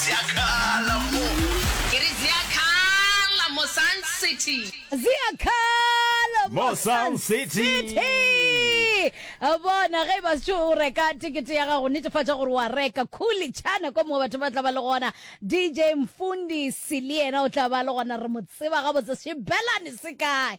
Ziakhala mo. Ke re ziakhala mo Sun City. Ziakhala mo Sun City. Bona ge e ba setšo o reka tekete ya gago netefatša gore wa reka khuli chana ko mongwe batho ba tla ba le gona DJ Mfundisi le yena o tla ba le gona re mo tseba gabotse sebelane se kae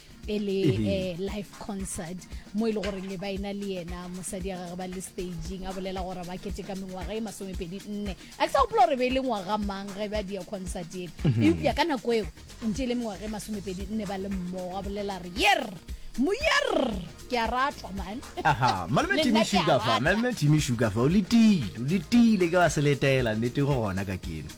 e le eh, live concert mo e le gore le baena le yena mosadi ya gage ba le staging a bolela gore ba kete ka mengwaga e masomepedi nne a ke sa gopola gore be e le ngwaga mang ge ba dia concert ele mhm. eupša ka nako eo ntse e le mengwaga e masomepedi nne ba le mmogo a bolela re yer moyer ke a ratwa malmalme timi sugafa o letile o letile ke ba seletela nnete go gona ka keno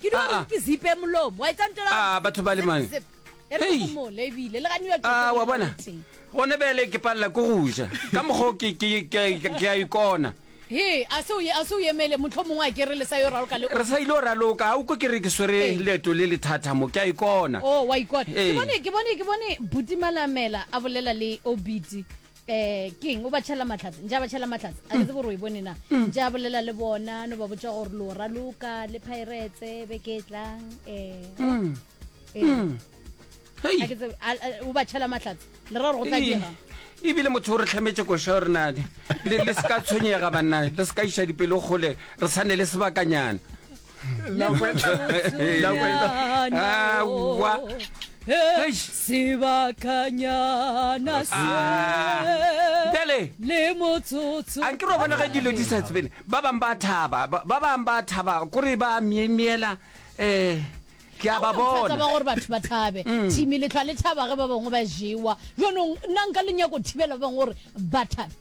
Ke dilo Ah, gore ah. ke zipe molomo. Wa e tsantela. Ah, batho ba le mang? Zip. E re Hey. go mo le ebile le ga New York. a wa bona gone bele ke palela ko go ja ka mokgwa o ke- ke- ke ke- ke a ikona He, a se o ye- a se o yemele motlho mongwe a kere le sa yo raloka le. re sa ile o raloka ga o ko ke re ke swere Ee. leeto le le thata mo ke a ikona Oh, wa ikona. Ee. Ke bone ke bone ke bone Buti Malamela a bolela le Obiti. eh king o ba tšhela matlhatse ntša ba tšhela matlhatse a ke tsebo gore o e bone na ntša bolela le bona no ba botša gore lo raloka le piretse beke e tlang um o ba tšhela matlhatse le ra gore go tla dira ebile motho o re tlhametse koša gore na le se ka tshwenyega banna le se ka iša dipelo gole re tshwane le sebakanyana sebakanyana se ah. bjale le motsotso a ke ro bona ge dilo di sa tsebene ba bang ba thaba ba bang ba thaba kore ba miemiela um ke a ba bona ba gore batho ba thabe mm. thimi letlhwa le thaba ge ba bangwe ba jewa jonong nna nka lenyako thibela ba bangwe gore ba thabe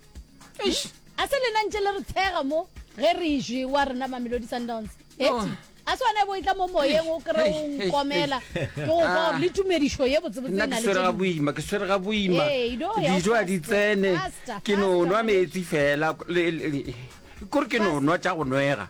A se lena ntše le re tshega mo ge re išwi wa rena Mamelodi Sundowns? Eti, a se wena e bo e tla mo moyeng o kry o nkomela ke go kwa gore le tumedišo ye botsebotse e nna na ke le swere ga tše dingwe. boima ke swere ga boima Ee, e no ya dijo a di faster, tsene faster, ke no faster, nwa Mamelodi. meetse fela le- le- kore ke no nwa tša go nwega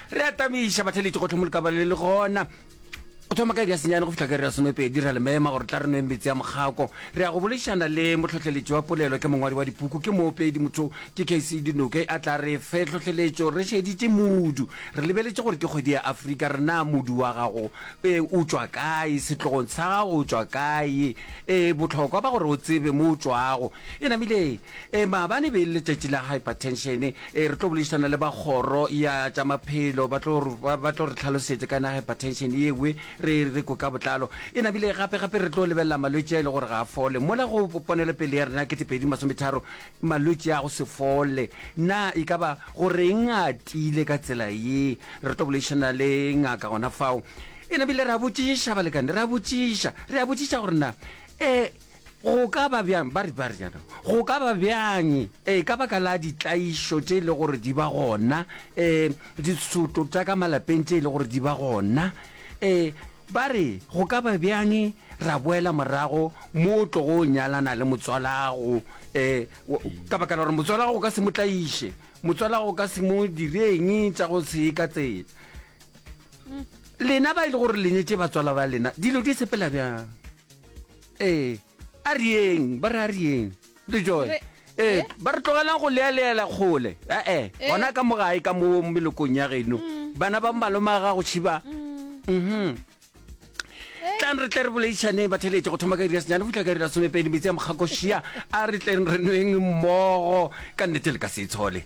re atamiša batheletši go tlhomo lekabale le gona go thoma ka iri ya senyane go fitlha ka iri ya somepedi ra le mema gore tla re nweng metsi a mokgako re ya go bolešana le motlhohleletši wa polelo ke mongwadi wa dipuku ke moopedi motho ke kc dinoke a tla re fe tlhohleletšo re šeditše modu re lebeletše gore ke kgwedi ya afrika re na modu wa gago e o tšwa kae setlogong sa gago o tšwa kae e botlhokwa ba gore o tsebe mo o tšwago e namile E, maabane e be e le letšatši la hypertension. E, re tlo boledišana le ba kgoro ya tša maphelo, ba tlo re, ba, ba tlo re tlhalosetse ka na hypertension ye we, re, re kwe ka botlalo. E namile gape, gape re tlo lebelela malwetši a e le gore ga a fole. Mola go ponelopele ya rena ya 2030, malwetši a go se fole, na e ka ba go reng a tiile ka tsela ye? Re tlo boledišana le ngaka gona fao. E namile re a botšiša, balekane, re a botšiša, re a botšiša gore na, e, Go ka ba bjang, ba re, ba re jaana, go ka ba bjang ee, ka baka la ditlaišo tše e le gore di ba gona, ee, ditshoto tša ka malapeng tše e le gore di ba gona, ee, ba re, go ka ba bjang ra boela morago mo o tlogo o nyalana le motswalago, ee, ka baka la gore motswalago o ka se mo tlaiše, motswalago o ka se mo direng tša go se ka tsela. Lena ba e le gore le nyetše batswala ba lena, dilo di sepela bjang? ee a re yeng ba re a re yeng le joe Re- ee eh? ba re tlogelang go lealeela kgole ee Eh. gona ka mo gae ka mo melokong ya geno bana ba malome a gago tšhiba mhm tlang re tle re boleišaneng ba theletše go thoma ka iri ya senyane go fitlha ka iri ya somepedi metsi a mokgakošia a re tleng re nweng mmogo ka nnete le ka se e tshole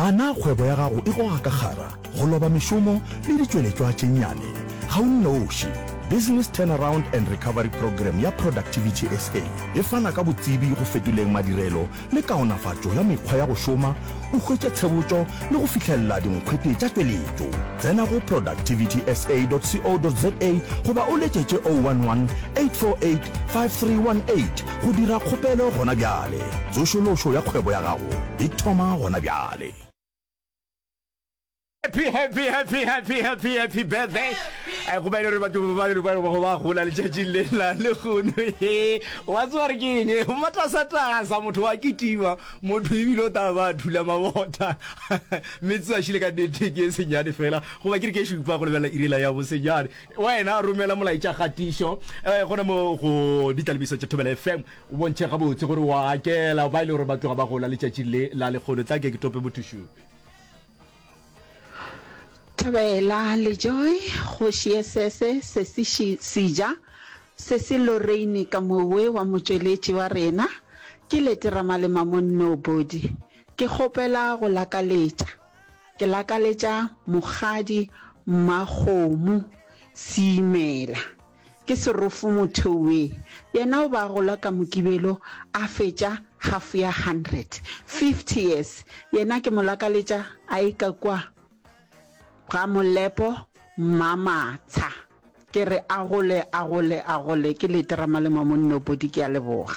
A na kgwebo ya gago e goga ka kgara, go loba mešomo le ditšweletšwa tše nnyane? Ga o nnoši. Business Turnaround and Recovery Programme ya Productivity SA e fana ka botsebi go fetoleng madirelo le kaonafatšo ya mekgwa ya go šoma, o hwetše tshebotšo le go fihlelela dinkgwete tša tšweletšo. Tsena go productivitysa.co.za goba o letšetše 011 848 5318 Go dira kgopelo gona bjale. Tsošološo ya kgwebo ya gago e thoma gona bjale. Happy, happy, happy, happy, happy, happy birthday. Eh, go ba e le gore batho ba le ba go ba gola letšatšing le la le gono he wa tsewa re ke eng o matasatasa motho wa kitima motho ebile o taba ba thula mabota mme tsewa šile ka nnete ke e senyane fela goba ke re ke šupa go lebelela irela ya bosenyane Wena romela molaetša kgatišo gona mo go Ditlalebiso tša Thobela FM o bontšhe gabotse gore o a akela ba e le gore ba tloga ba gola letšatšing le la lekgono. Tla ke ke tope mothušupi. Thobela, Lejoy, Kgoši ye Sese, Sesi Shi, Sija, Sesi Loreine ka mowe wa motšweletši wa rena. Ke Leti Ramalema mo Nobody. Ke kgopela go lakaletša. Ke lakaletša Mokgadi Mmakgomo Seimela. Ke serofo motho we. Yena o be a gola ka Mokibelo a fetša half ya hundred. Fifty years. Yena ke mo lakaletša a eka kua ga Molepo Mmamatsha. Ke re a gole, a gole, a gole. Ke Leterama le Mamonnoopodi. Ke a leboga.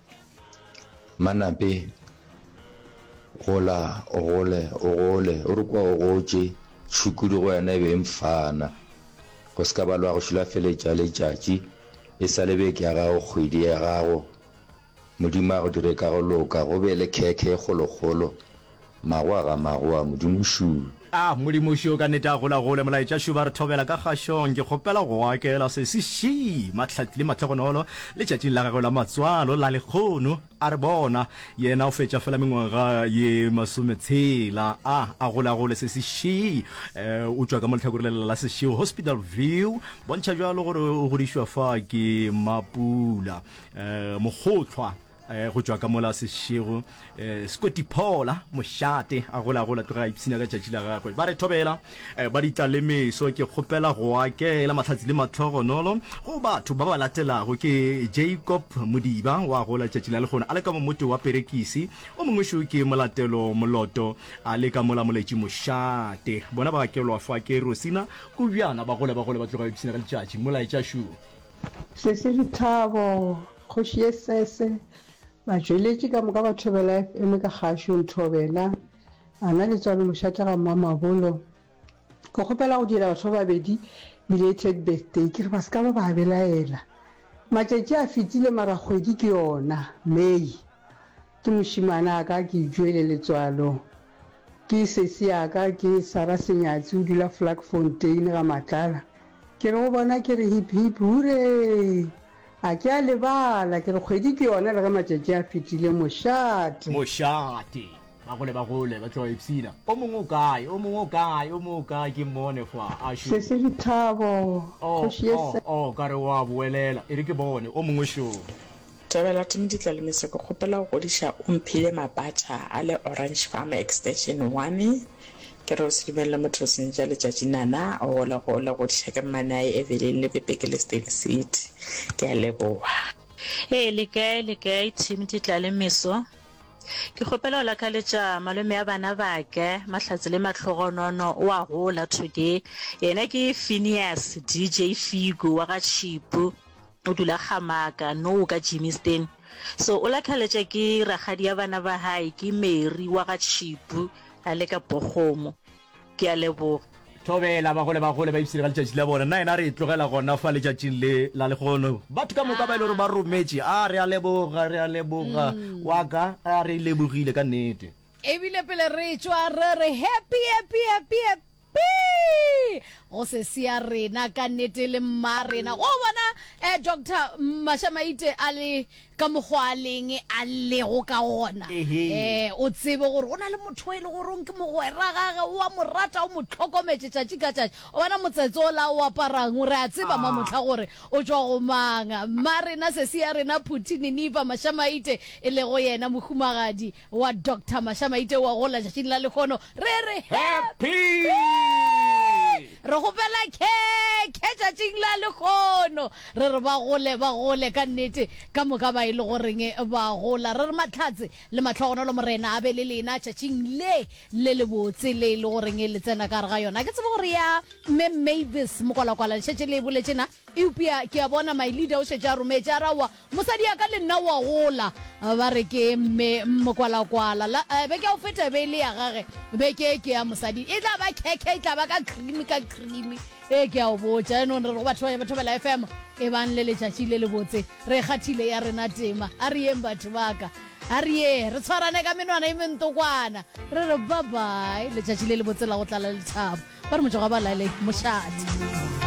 Manape, Gola o gole, o gole, o re kwa o gotše, tšhukudu go wena e be e mfana. Go se ka ba lwa go šilafeletša letšatši, e sa le beke ya gago, kgwedi ya gago, Modimo a go dire ka go loka, go be le khekhe e kgolokgolo, Magwa ga magwa, Modimo šuu. A, Modimo šuu, ka nnete a golagole, Molaetša šuu, ba re thobela ka kgašong. Ke kgopela go go akela se se šii, mahlatli le mahlogonolo, letšatšing la gagwe la matswalo, la lekgono. A re, Bona, yena o fetša feela mengwaga ye masometshela. A, a golagole se se šii. Uh, o tšwa ka mo lehlakore lela la sešego, Hospital View, bontšha bjalo gore o godišwa fa ke mapula, uh, mokgohlwa. eh, go tšwa ka mola sešego eh, sekotiphola mošate a golagola tloge a ipshina ka tšatši la gagwe ba re thobela eh, ba ditla le meso ke kgopela go akela mahlatsi le matlhogonolo go batho ba ba latelago ke jacob modiba wa gola tšatši la lekgona a le ka momote wa perekisi o mongwešu ke molatelo moloto a le ka mola moletši mošate bona ba akelwa fa ke rosina kobjana ba gole ba gole ba tloga ipshina ka letšatši molaetša šu Sesi Lethabo, Kgoši ye Sese, batšweletši ka moka ba thobela FM ka kgašo, Nthobela, a na le tswalo mošatlega mmamabolo, ke kgopela go direla batho ba babedi belated birthday ke re ba se ka ba ba belaela matšatši a fetile mara kgwedi ke yona May. Ke mošimana a ka ke Joele Letswalo. Ke sesi a ka ke Sara Senyatsi o dula Vlakfontein ga Matlala. Ke re go bona ke re hip hip huree! A ke a lebala ke re kgwedi ke yona le ge matšatši a fetile mošate. Mošate! Ba gole ba gole ba tloga ipshina. O mongwe o kae? O mongwe o kae? O mongwe o kae? Ke mmone fa a šo. Sesi Lethabo, kgoši ye sa. Oh, oh, oh, ka re o a boelela. E re ke bone o mongwe šo. Thabela Timiditla Lemeso ke kgopela go godiša o mphile mapatša a le Orange Farm Extension one ke re o se dumelele motho go senyetša letšatši nana o gole gole godiša ke mmane a ye Evelyn le Pepe ke le Stake City ke a leboga. Ee le kae le kae Timiditla Lemeso ke kgopela go lakaletša malome a bana bake Mahlatse le Mahlogonono o a gola today yena ke Phineas DJ Figo wa ga Tšhipu. O dula Gamaka, nou ka Jimmy'ston. So o lakhaletša ke ragadi ya bana ba hae, ke Mary wa ga Tšhipu a le ka Bokgomo. Ke a leboga. Thobela, bagole, bagole ba ipshine ka letšatši la bona. Nna yena a re e tlogela gona fa letšatšing le la lehono. Batho ka moka ba e le gore ba rometše, a re a leboga, re a leboga, wa ka, a re e lebogile ka nnete. Ebile pele re tšwa re re, Happy, happy, happy, happy. Pee! Go se sea rena ka nete le mma rena. Wa bona eh Doctor Mashamaite a le ka mokgwa a leng a lego ka gona. Ehe. Eh o tsebe gore go na le motho e le gore ke mogwera gage wa mo rata o mo tlhokometse tšatši ka tšatši. O bona motsetse o la o aparang o re a tseba Ah. mamotlha gore o tšwa go mang. Mma rena se sea rena Phuti Niniva Mashamaite e lego yena mohumagadi wa Doctor Masha Maite wa gola tšatšing la lekgono re re happy re gopela khekhe tšatšing la lekgono re re ba gole ba gole ka nnete ka moka ba e le goreng ba gola re re matlhatse le matlhogonolo morena a be le lena tšatšing le le le botse le e le goreng le tsena ka re ga yona ke tsebe gore ya mme mavis mokwalakwala le šetse le e boletsena eupša ke a bona my leader o šetse a rometše a rawa Mosadi ya ka le nna wa gola. Ba re ke Mme Mokwalakwala. La, eh, beke ya go feta e be e le ya gage. Beke e ke ya mosadi. E tla ba khekhe, e tla ba ka cream, ka cream. E ke ya go botša. Yaanong re re go batho ba Thobela FM, e bang le letšatši le lebotse. Re e kgathile ya rena tema. A re yeng batho ba ka. A re ye, re tshwarane ka menwana e mentokwana. Re re bye-bye. Letšatši le lebotse la go tlala lethabo. Ba re motšego wa ba la le mošate.